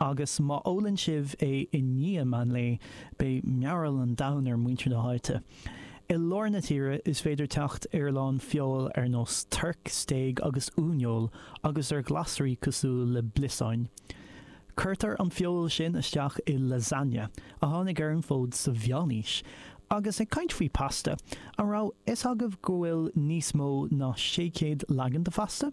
Agus má ólann sibh é i ndiaidh meánlae, beidh mearbhall an domhain ar mhuintir na háite. I lár na tíre, is féidir teacht ar a lán feoil ar nós toirc, stéig agus uaineoil, agus ar ghlasraí cosúil le bliosáin. Cuirtear an feoil sin isteach i lasagne, a tháinig ar an bhfód sa Mheánaois. Agus ag caint faoi pasta, an raibh fhios agaibh go bhfuil níos mó ná sé chéad leagan de phasta?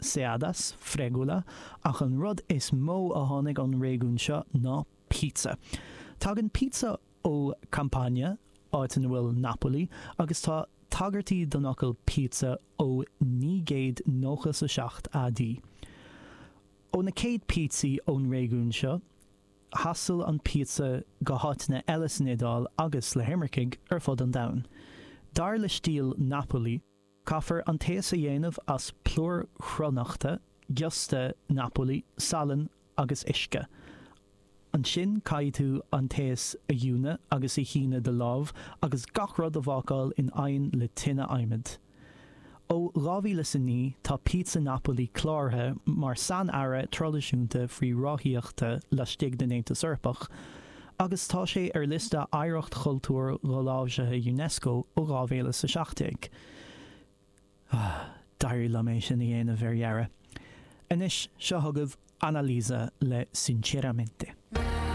Seadas, Fregula, ach an rud is mó a tháinig ón réigiún seo ná pizza. Tagann pizza ó Campania, áit ina bhfuil Napoli, agus tá tagairtí don fhocal pizza ó naoi gcéad nócha 's a seacht AD. Ó na chéad píotsaí ón réigiún seo, thaistil an píotsa go háiteanna eile san Iodáil agus le himircigh ar fud an domhain. Dar le stíl Napoli, Caithfear an taos a dhéanamh as plúr cruithneachta, giosta Napoli, salann agus uisce. Ansin caithfidh tú an taos a fhuineadh agus a shíneadh de láimh agus gach rud a bhácáil in oigheann le tine adhmaid. Ó dhá mhíle is a naoi tá píotsa Napoli cláraithe mar sain-earra traidisiúnta faoi ráthaíocht laistigh den Aontas Eorpach, agus tá sé ar liosta Oidhreacht Chultúir Dholáimhsithe Unesco ó 2017. D'éirigh liom é sin a dhéanamh ar dheireadh. Anois, seo chugaibh Annalisa le Sinceramente.